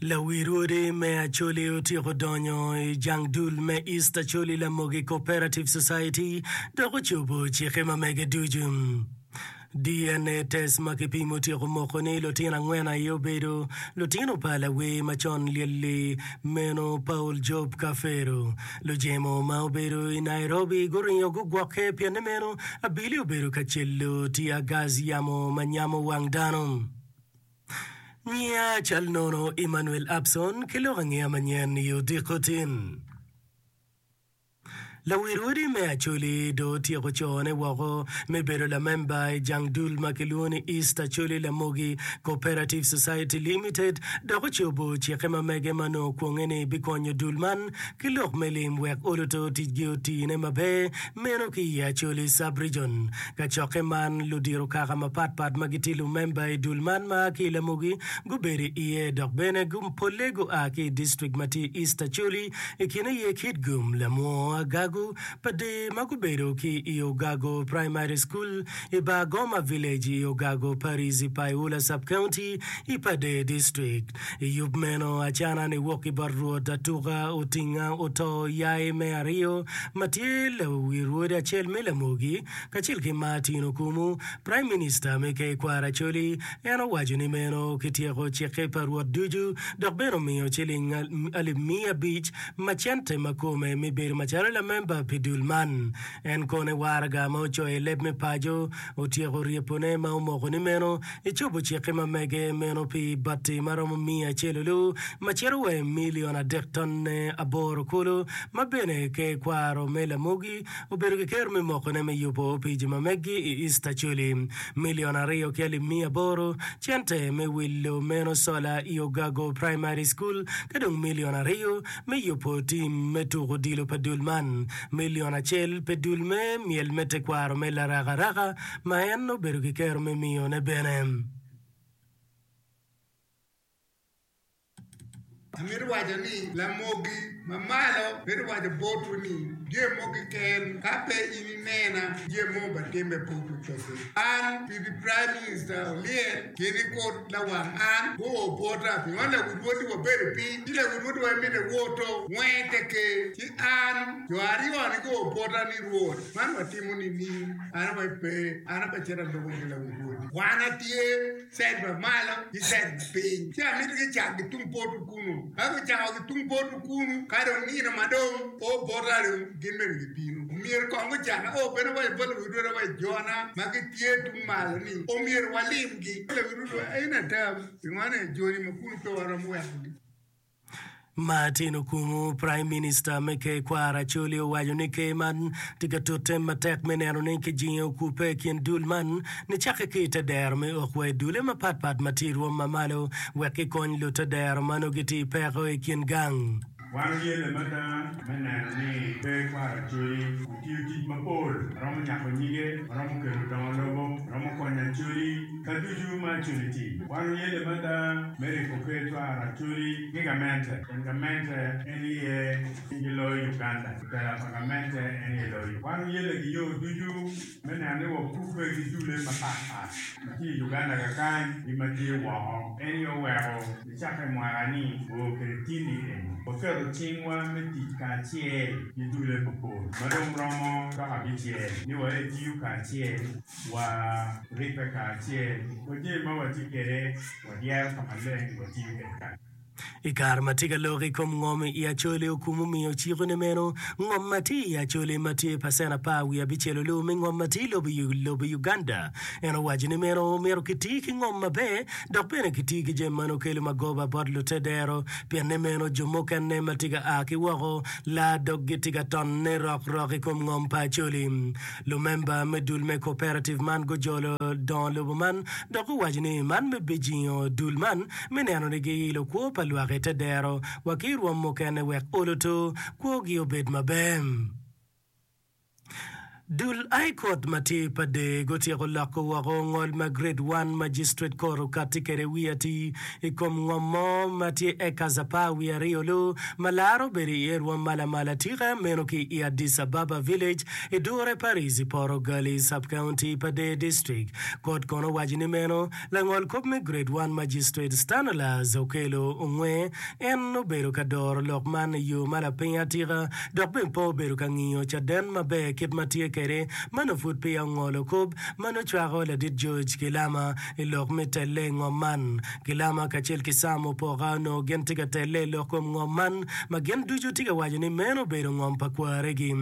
Lawi rwodi me Acholi otyeko donyo i jang dul me East Acholi Lamogi Cooperative Society dok ocobo cikke ma mege ducu. DNA test ma kipimo otyeko moko ni lutino angwen aye obedo lutino pa lawi ma con lyelli meno Paul Job Kafero. Lujemo ma obedo i Nairobi guringo gugwokke pienni meno abili obedo ka celo tiagas yamo ma nyamo wang dano. Nyia cal nono Emmanuel Abson ki lok angeya manyen i odiko tin. Lawil odi me Acholi dong otyeko cone woko me bedo lamemba i jang dul ma kilwongo ni East Acholi Lamogi Cooperative Society Limited dok ocobo cikke ma mege ma nongo okwonge ni bikonyo dul man ki lok me lim wek oluto ticgi otine maber Meno ki i Acholi Sub-Region. Kacokke man, ludiro kaka mapat pat ma gitye lumemba i dul man ma a ki i Lamugi gubedo iye dok bene polle gua ki i distrik ma tye i East Acholi, i kine aye Kitgum, Lamwo, Agagu, Pader ma gubedo ki i Ogago Primary School, i Bar Goma Village i Ogago Parish i Paiula Sub-County i Pader District. I yub meno, acana ni wok ki bot Rwot atuka otinga oto yai me aryo ma tye lawi rwodi acel me lamogi, kacel ki Martin Okumu, Praim Minista me Kekwar Acholi. En owaco ni meno kityeko cikke pa Rwot ducu dok bene omiyo ciling alip miya abic ma cente ma kome me bedo macalo lamemba pi dul man. En kone waraga ma ocoyo i leb me paco. otyeko ryepone ma omoko ni meno ecobo cikke ma mege meno pi bati ma romo miya acel olu ma cito wa i milion adek tonne aboro kulu ma bene ke kwaro me lamogi obedo ki kero me mokone me yubo opici ma meggi i East Acholi milion aryo ki alip miya aboro cente me wilo meno sola i Ogago Primary School ka dong milion aryo me yubo tim me tuko odilo pa dul man. Milion acel pe dul me myel me tekwaro me larakaraka ma en obedo ki kero me miyone bene. Amito waco ni Lamogi ma Malo mito waco botwu ni jami mogo keken ka pe in inena, jami mogo batimme pud ocobi. An, Pipi Prime Minister olyel, gin ikur lawang an gu o bwota, pingo lawud woti wa bedo pi, ci lawud woti wa imite woto wenge te ker, ci an jo aryo ni gu o bwota ni Rwot, man wa timo ni ni, an wa ipe, an aba cito alubo ki lawud woti, wan a tye side ma malo ki side ma piny, ci amito gi cak gi tung poto kunu, ka gu cako gi tung poto kunu, ka dong nino ma dong o bwota dong gin bene gi bino, omyero kong gu caka o bene wa ibot lawud woti wa ijo na ma gi tye tung malo ni omyero wa lim. Martin okumu praim minista me tekwaro Acholi owaco ni ker man tye ka tut tem matek me neno ni kijingo okupe i kin dul man nicakke ki i te dero me ok wa i dule mapatpat ma tye i rwom mamalo wek gikony lute dero ma nongo gitye i peko i kin gang. Wan tye lamata me neno ni pe kwaro codi, otiyo tic mapol, romo nyako nyige, romo kelo dongo lobo, romo konyo acodi ka ducu ma acodi ti. Wan oye lamata me riko pe cwaro acodi ki gamente, pien gamente en iye cing ki loyo Uganda, otela pa gamente en iye loyo. Wan oye lagiyo ducu. me neno ni wakubbe ki dulle mapat pat ma tye i Uganda kakany ki ma tye woko. En aye oweko nicakke mwaka ni oo kwede tinni eni waketo cingwa me tic kacel ki dulle mapol ma dong romo dok abicel ni waye tiyo kacel, wa ribbe kacel, wa jami ma watye kwede wadyero ka maleng watiyo kwede kacel. I kare ma tye ka lok i kom ngom i Acholi, Okumu miyo cik ni meno ngom ma tye i Acholi ma tye pacen apar wiye abicel olu me ngom ma tye i lobo Uganda. En owaco ni meno myero kiti ki ngom maber dok bene kiti ki jami ma nongo kelo magoba bot lute dero pienne meno jo mukene ma tye ka a ki woko laa doggi tye ka tonne rok rok i kom ngom pa Acholi. Lumemba me dul me cooperative man gujolo dongo lobo man dok guwaco ni man me bijingo dul man me neno ni giilo kwo pa lwaki te dero wa ki rwom mukene wek olo to kwo gi obed maber. Dul I kot matir pa dee gutyeko loko woko ngol ma grade one magistrate court okati kede wii ati I kom ngom mo ma tye acres apar wii aryo loo ma laro bedo iye rwom ma lamal atika meno ki I Addis Ababa village I dure pa Rizi Poro Gali subcounty pa Dee district. Kot kono owaco ni meno Langol kop me Grade One Magistrate Stanolaus Okello onge en obedo ka doro lok man i yo ma lapiny atika dok bene pe obedo ka ngiyo caden maber kit ma tye kwede ma nongo pud peya ongolo kop ma nongo cwako ladit George Gilama i lok me telle i ngom man. Gilama kacel ki Sam Opoka onongo gin tye ka telle i lok kom ngom man ma gin ducu tye ka waco ni meno obedo ngom pa kwaregi.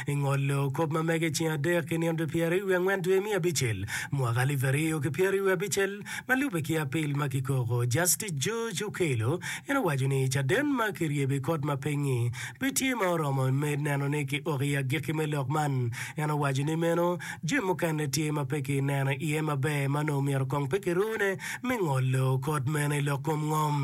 ingolo kop ma mege i ceng adek ki nino pyeraryo wiye angwen dwe me abicel mwaka alip aryo ki pyeraryo wiye abicel ma lube ki apil ma kikoko Justice George Okello en owaco ni caden ma kiryebe i kot ma pingngi pe tye ma oromo me neno ni ki ok i agikki me lok man en owaco ni meno jami mukene tye ma pe ki neno iye maber ma nongo myero kong pe kirune me ngolo kot meno i lok kom ngom.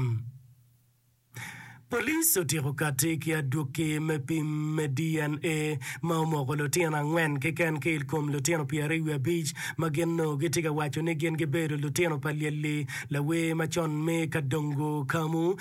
Police otyeko kati ki adwoki me pim me DNA ma omoko lutino angwen keken ki ilkom lutino pyeraryo wiye abic ma gin onongo gitye ka waco ni gin gibedo lutino pa Lyelli lawer macon me Kadongo Kamu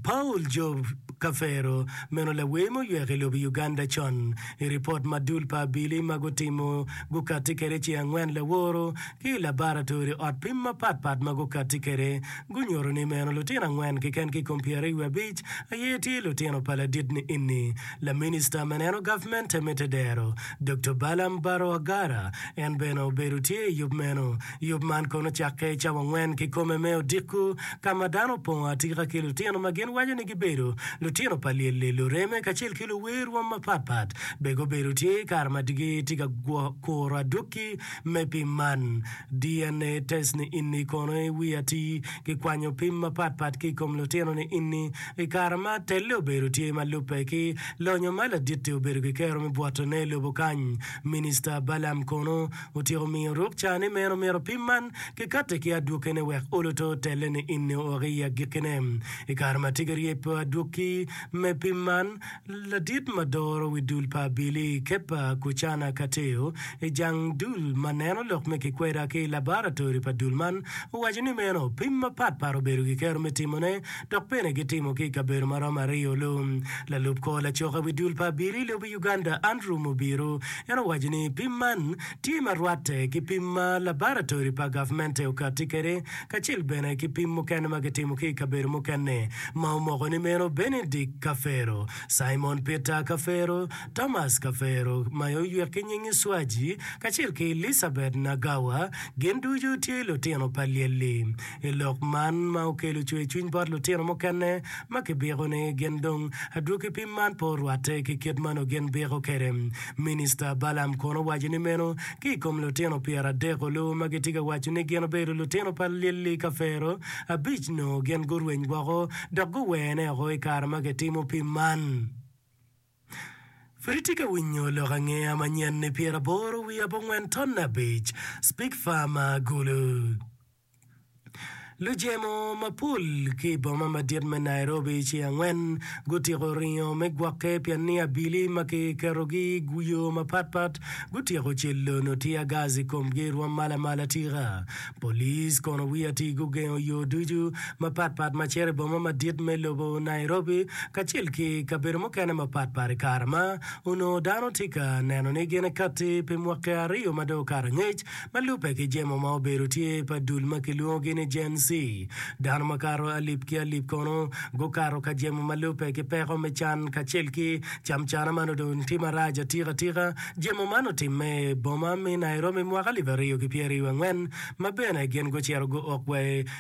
Paul Job Kafero meno lawer ma oywek i lobo Uganda con. I ripot ma dul pa Abili ma gutimo gukati kede ce angwen laworo ki i labaratori, ot pim mapat pat ma gukatti kwede, gunyuto ni meno lutino angwen keken ki i kom pyeraryo wiye abic aye tye lutino pa ladit-ni enni. Laminista me neno gavmente me tedero, Doktor Balaam Barrow-Agara, en bene obedo tye i yub meno. Yub man kono cakke i cawa angwen kikome me odiko, ka ma dano opongo atika ki lutino ma gin waco ni gibedo lutino pa lyelli, lureme, kacel ki luwer rwom mapat pat. Be gubedo tye i kare ma digi tye ka kuro adwoki? Me pim man, DNA test ni inni kono i wi atir kikwanyo pim mapat pat ki i kom lutino ni inni i kare ma telle obedo tye ma lubbe ki lonyo ma laditti obedo ki kero me bwotone i lobo kany. Minista Balaam kono otyeko miyo ruk ca ni meno myero pim man kikatti ki adwokene wek oluto telle ni inni ook i agikkine. I kare ma tika ryeb pe adwokki me pim man, Ladit ma doro wi dul pa Abili, Kebba Kucana Kateo, i jang dul ma neno lok me kikweda ki labaratori pa dul man, owaco ni meno pim mapat pat obedo gikero me timone dok bene gitimo ki i kabedo ma romo aryo lung. Lalub kor lacoka wi dul pa Abili i lobo Uganda, Andrew Mubiru, en owaco ni pim man tye ma rwatte ki pim ma labaratori pa gavmente okatti kwede kacel bene ki pim mukene ma kitimo ki i kabedo mukene ma omoko ni meno Benedict Kafero, Simon Peter Kafero, Thomas Kafero ma oywek ki nying Iswaji, kacel ki Elizabeth Nagawa, gin ducu tye lutino pa Lyelli. I lok man ma okelo cwercwiny bot lutino mukene ma kibiko ni gin dong adwogi pim man pe orwatte ki kit ma nongo gin biko kwede, Minista Balaam kono owaco ni meno Ki i kom lutino pyeradek-ku luwu ma gitye ka waco ni gin obedo lutino pa Lili Kafero, abic nongo gin gurweny woko dok guwene woko i kare ma kitimo pim man. Pud itye ka winyo lok angeya manyen-ni pyeraboro wiye abongwen tonne abic, Spig Farmer, Gulu. Lujemo mapol ki i boma madit me Nairobi ci angwen gutiko ringo me gwokke pi ania abili ma kiketogi i yo mapat pat, gutyeko celono tia gas i komgi i rwom mala mala tika. Police kono wiye atir gugengo yo ducu mapat pat ma cito i boma madit me lobo Nairobi kacel ki kabedo mukene mapat pat i kare ma onongo dano tye ka neno ni gin ikatti pi mwaki aryo ma dong okato angec Ma lubbe ki jemo ma obedo tye pa dul ma kilwongogi ni Gen Z, dano makato alip ki alip kono gukato ka jemo ma lubbe ki peko me can kacel ki camcana ma nongo dong tye marac atikatika. Jemo man otimme i boma me Nairobi mwaka alip aryo ki pyeraryo angwen ma bene gin gucito guok wa i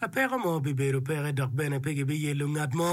A Peko mo bibedo peke dok bene pe gibiyello ngat mo.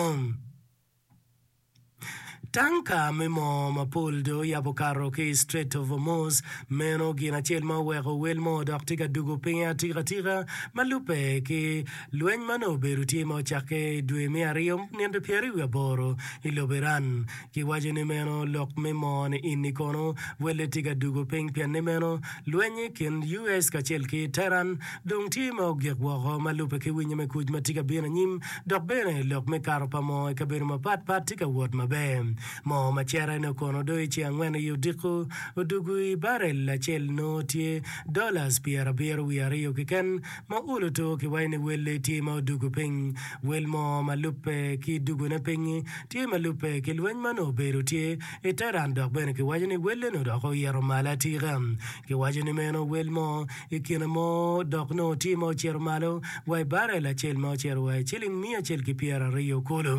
Tanka me moo mapol dong oyab okato ki i Strait of Hormuz, meno gin acel ma oweko wel mo odok tye ka dugo pinye atikatika. Ma lubbe ki lweny ma nongo obedo tye ma ocakke i dwe me aryo ninde pyeraryo wiye aboro i lobo Iran, Kiwaco ni meno lok me moo ni inni kono welle tye ka dugo piny pien ni meno lweny i kin US kacel ki Tehran dong tye ma ogik woko ma lubbe ki winyo me kuc ma tye ka bino anyim dok bene lok me kato pa moo i kabedo mapat pat tye ka wot maber. Moo ma cere ne okono do i ce angwen i odiko odugu i barel acel nongo tye dollars pyerabiro wiye aryo kiken Ma olo to ki wayo ni welle tye ma odugo piny. Wel mo ma lubbe ki dugone piny-nyi tye ma lubbe ki lweny ma nongo obedo tye i Teheran dok bene kiwaco ni wellene odok oyito malo atika. Kiwaco ni meno wel mo i kine mo dok nongo tye ma ocito malo wa i barel acel ma ocito wa i ciling miya acel ki pyera aryo kulu.